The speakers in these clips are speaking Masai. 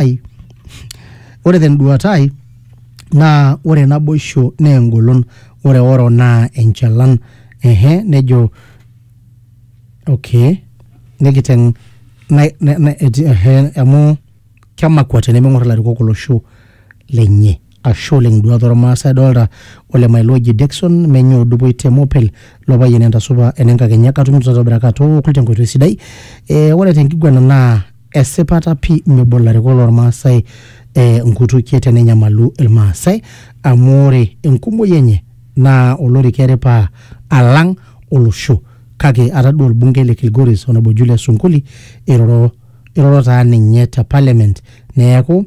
ai. Ore tenduata ai naa ore naboisho naa engolon, ore oro naa enchalan. Ehe, nejo okay, nikiteng na, na, na, ehe, amu kemakwa tenemeng'or ilarikok olosho lenye. Ashe oleng duat ormaasai adolta ole Mailo oji Dexon menye odupoi te Mopel lo payian entasupa enenkakenya katumito tatobiraka atookul tenkoitoi sidai eh, ore tenkiguana naa esipata pii mebo ilarikok lormaasai eh, nkutukie tenenyamalu irmaasai amu ore enkumoi enye naa olorika eripa alang olosho kake atadua orbungei le Kilgoris onabojulia Sunkuli iroro iroro taa ninye te parliament neeku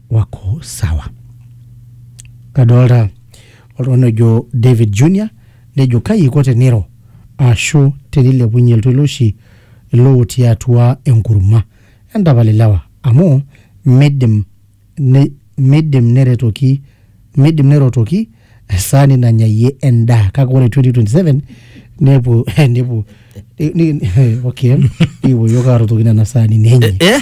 wako sawa kadolta oltung'ani ojo David Junior nejo kai iko teniro ashu tenilepunye iltoiloshi ilo otii atua enkurma entapal ilewa amu midim ne, midim neretoki midim nerotoki esaani nanyayie endaa kake ore 2027 nepuo nepuo ni- ni- eh, okay nikipuo yiok arotoki nena saani nenye Eh?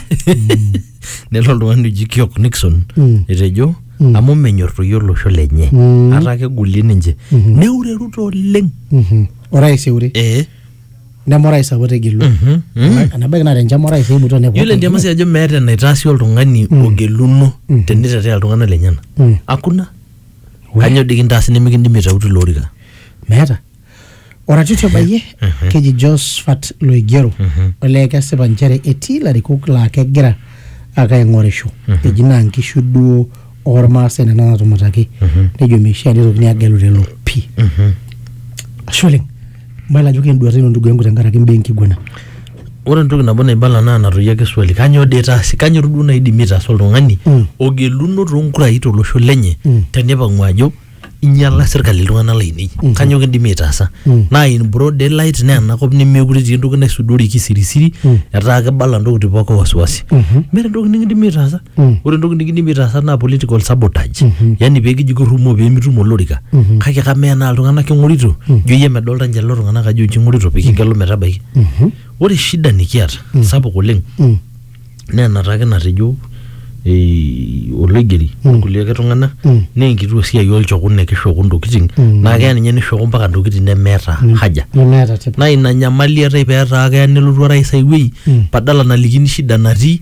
nelo oltung'ani oji kiok nixon Mm. etejo Mm. amu menyor toi olosho lenye Mm. ata kegulie ninche Mhm. neure ruto oleng Mhm. orais eure Eh, neme orais apa otegelua mhm, mm. enabaiki naa tenchama orais eimutua nepuo yiolo endiama si ajo meeta enaitaasi oltung'ani ogeluno tenitetea iltung'anak lenyena Mm. hakuna We- Kanyoo dii kintaasi nimikindimi aitau tilo orika? meeta oratioti obayie keji Josphat Loigero olee kesipa nchere etii ilarikok laa kegira ake aing'orisho eji naa nkishu duo ormaasai nena natumataki nejo meishaa nitokini agelu lelo pii ashe oleng mayiolo ajo kenduata ino ndugu yangu tenkaraki imbaa enkiguana ore entoki nabo naibala naa natoyio ake swali kanyoo dee itaasi kanyoo duo naidimi aitaasa oltung'ani Mm. ogeluno toonkurai tolosho lenye Mm. tenipang'u ajo inyiala sirkali iltung'anak lainei kanyoo kindimi aitaasa Mm. naa in broad daylight naa enakop nemeekure etii entoki naisudori kisirisiri Mm. etaa kibala intokitin pooki wasiwasi Mhm. meeta entoki nikindimi aitaasa ore entoki nikidimi aitaasa naa political sabotage yani peekiji kirrumoo peemitum olorika kake kamaa enaa iltung'anak king'orito ijo iyie medolta ninche lelo tung'anak ajo inchi ing'orito pikigelu metabaiki ore shida nikiata sapuk oleng naa enataa ake natejo eh, oloigeri kulie ake tung'anak naa enkituo siai olchokun nekishoku intokiting naa keya ninye nishoku mpaka intokiting nemeeta haja nemeeta tipat naa ina nyamali eetae petaa keya nelotu orais ai wuei badala nalikini shida natii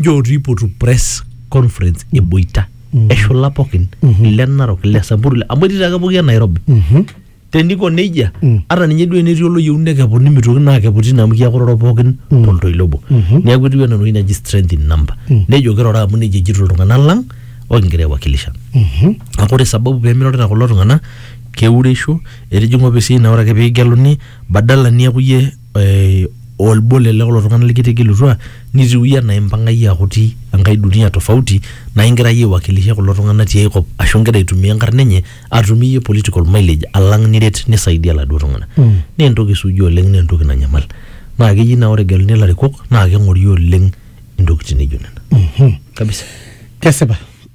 njoo tiipotu press conference eboita eshula pookin ile narok ile samburu ile- amu etii taake pooki e nairobi teniko nejia ata ninye duo enetii oloyieu nekepuni nimitoki naa akepu tine amu kiakororo pookin toltoilo obo neeku etiu enaa entoki naji strength in number nejo kirora amu nejia ejito iltung'anak lang okingira aiwakilisha naa ore sababu pemirorita kulo tung'anak keureisho etijing'a ofisi naa ore ake pigeluni badala niaku iyie eh, olbo lele kulo tung'anak likitegelutua nitiu iyie anaa impang'a iyie akuti enkae dunia tofauti naa ingira iyie aiwakilisha kulo tung'anak tiai kop ashu ingira aitumia enkarna enye atumie iyie political mileage alang niret nisaidia iladuo tung'anak mm. naa entoki suuji oleng naa entoki nanyamal naa keji naa ore egeluni ilarikok naa keng'ori oleng intokitin naijo nena mm -hmm. kabisa kesipa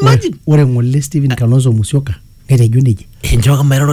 imagine ore ng'ole Stephen Kalonzo Musyoka netejo nejia enchooki mairoro